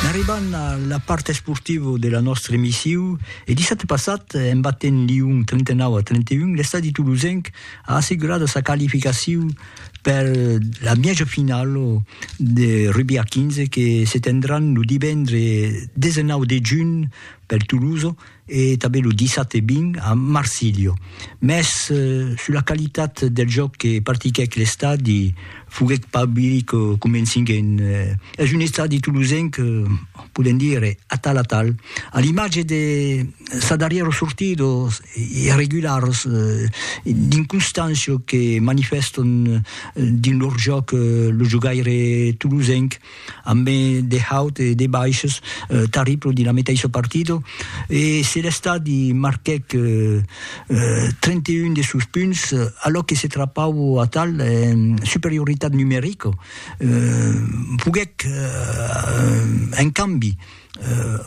N'arribant a la part esportiva de la nòstra emission, e dissabte passat, en batent Lyon 39 a 31, l'estadi tolosenc a assegurada sa qualificacion per la mièja finala de rugbi a 15 que se tendràn lo divendre 19 de junh per Tolosa, e tanben lo 17 e 20 a Marsilio, mès sus la qualitat del jòc que practiquèc l'estadi foguèt pas biric convencinguent. Es un estadi tolosenc, podèm dire, atal atal, a l'imatge de sa darrièra sortida, los irregulars d'inconstància que manifèstan dins lor jòc lo jogaire tolosenc, amb de haut e de baishs tarriplo dins la metaissa partida e se l'estadi marquèc 31 de sos punts alòc que se trapau atal en superioritat numerica foguèc en cambi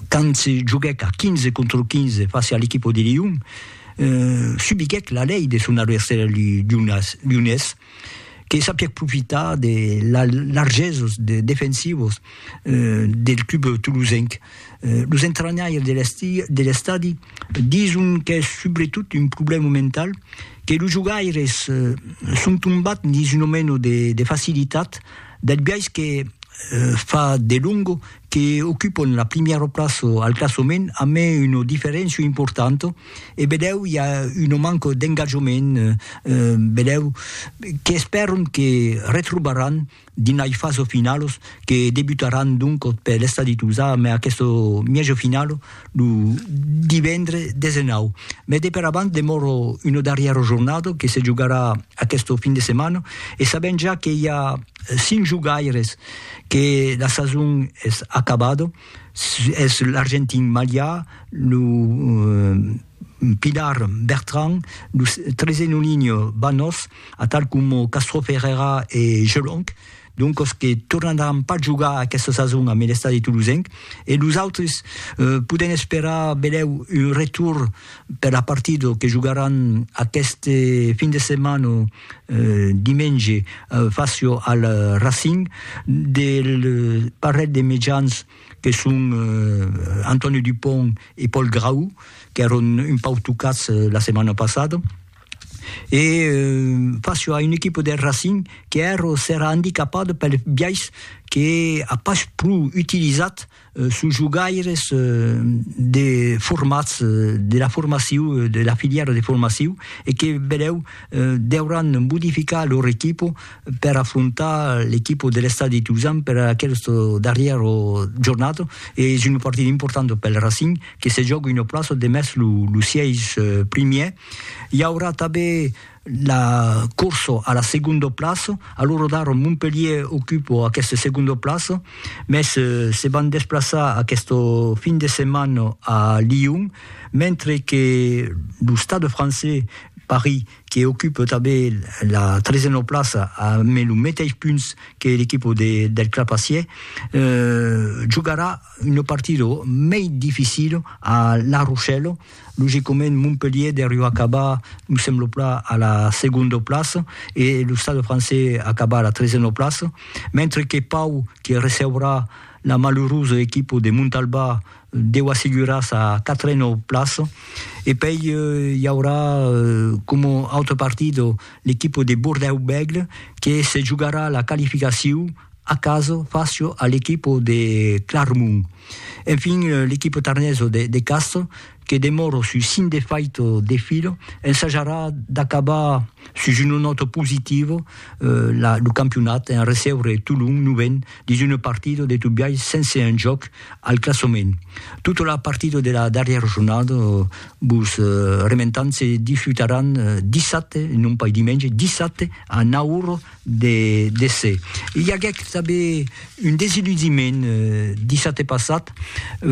quand se joguèc a 15 contra 15 fàcia a l'equipa de Lion subiguèc la lei de son adversari lionés. que sapièc profitar de largeses defensivas del club tolosenc. Los entranhaires de l'estadi dison qu'es subretot un problèma mental, que los jogaires son tombats dins una mena de facilitat, del biais que fa delonga que ocupon la primièra plaça al classament amé una diferéncia importanta e bedèu i a una manca d'engatjament bedèu qu'espèron que retrobaràn dins lai fasa finalas que debutaràn doncas per l'estadi Tuzà amé aquesta mièja finala lo divendre 19 mai de per abans demòra una darrièra jornada que se jogarà aquesta fin de setmana e sabèm ja que i a 5 jogaires que la sason es acabada, es l'argentin Malià, lo pilar Bertrand, lo Trezenolinho Banos, atal coma Castro Ferreira e Gelonc, doncas que tornaràn pas jogar aquesta sason amb l'estadi tolosenc, e los autres podèm esperar benlèu un retorn per la partida que jogaràn aqueste fin de setmana Dimenge facio al Racing del parelh de mejans que son Antonio Dupont e Paul Grau, qu'èron un pauc tocats la setmana passada, e facio a un equipa del Racing qu'èra andicapada pel biais que a pas pro utilizat Sus jogaires de formats de la formaciu, de la filièra de formaciu, e que benlèu deuràn modificar lor equipo per afrontar l'equipo de l'Estadi Tuzan per aqueste darrièr jornat. Es una partida importanta pel Racing que se jòga una plaça demest lo sièis primièr. I aurà tanben la corso a la segondo plaço, a lo rodar Montpellier ocupo aqueste segondo plaço, mès se van desplaçar aqueste fin de setmana a Lyon, mentre que lo Stade francés Paris que ocupe tanben la tresena plaça amb lo meteis punts que l'equipo del Clapacier, jogarà Un partido mei dificil a La Rochelle, logicament Montpellier deriu acabar me semblo plan a la segonda plaça e lo Stade Français acabar a la tresena plaça, mentre que Pau que receurà la malurosa equipa de Montalbà deu assegurar sa quatrena plaça e pei i aurà coma autre partido l'equipa de Bordèu-Bègle que se jogarà la qualificacion a caso facio a l'equipo de Clarmont. Enfin, l'equipo tarneso de, de Castro, que demoro su sin defaito de filo, ensajarà d'acabar sus una nòta positivo la, lo campionat en recebre Tolon novèn dins una partida de tot biais sense enjòc al classament. Tota la partida de la darrièra jornada, vos rementam, se disputaràn dissabte, non pas dimenge, dissabte a 9 ora de déser. I aguèc tanben un desiludiment dissabte passat,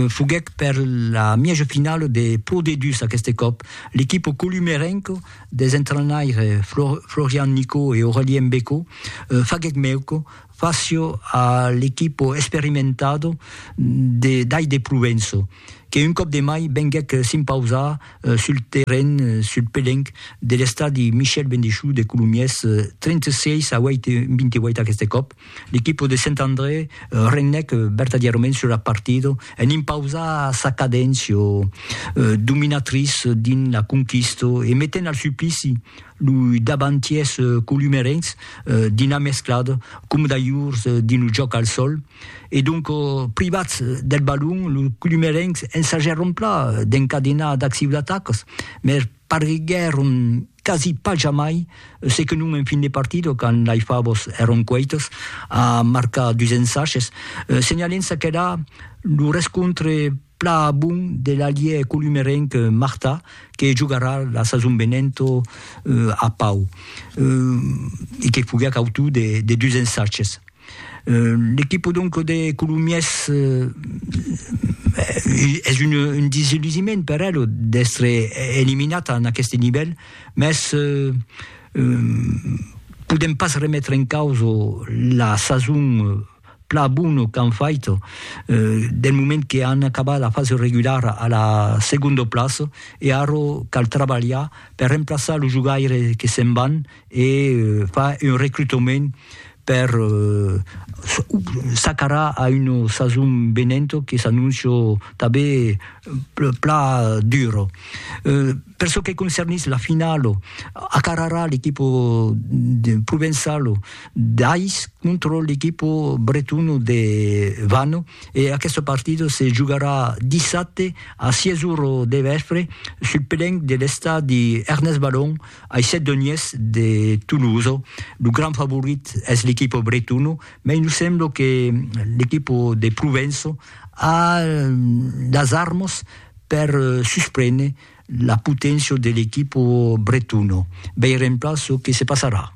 foguèc per la mièja finala de Pro D2 aqueste còp, l'equipa columerenca des entrainaires Florian Nicot e Aurelien Becco faguèc mèuca fàcia a l'equipa experimentada d'Ai de Provença. que un còp de mai venguèc s'impausar sul terren, sul pelenc, de l'estadi Michel Bendechoux de Colomiers, 36 a 8, 28 aqueste còp, l'equipo de Sent André regnèc vertadièrament sur la partida en impausar sa cadéncia dominatrice dins la conquista e metent al suplici loi davantiers columerencs dins la mesclada, coma d'alhurs dins lo jòc al sòl. E donc, privats deth balon, los colomerencs ensajèron pla d'encadenar d'ath siu d'atacas, mès parguèron quasi pas jamai se que non en fin de partida, quand lei favas èron cueitas, a marcar dus ensages, senhalent-se qu'èra lo rescontre Plan a bon de l'alièr columerenc Martà que jogarà la sason venent a Pau e que foguèt autor de dus ensatges. L'equipa donc de Colomiers es un desillusiment per ela d'èstre eliminat en aqueste nivèl, mès podèm pas remetre en causa la sason plan bono qu'an fait del moment que an acabat la fasa regulara a la segunda plaça e ara cal trabalhar per remplaçar los jogaires que se'n van e far un recrutament per s'acarar a una sason venenta que s'anóncia tanben plan dura. Per çò que concernís la finala, acararà l'equipa provençala d'Ais contra l'equipa bretona de Vannes e aquesta partida se jogarà dissabte a 6 ora de vèspre sul pelenc de l'estadi Ernest Ballon ai Sedoniers de Tolosa. Lo grand favorit es l'equipa bretona, mai nos sembla que l'equipa de Provença a las armas per susprene la poténcia de l'equipo bretona. Veirem plan çò que se passarà.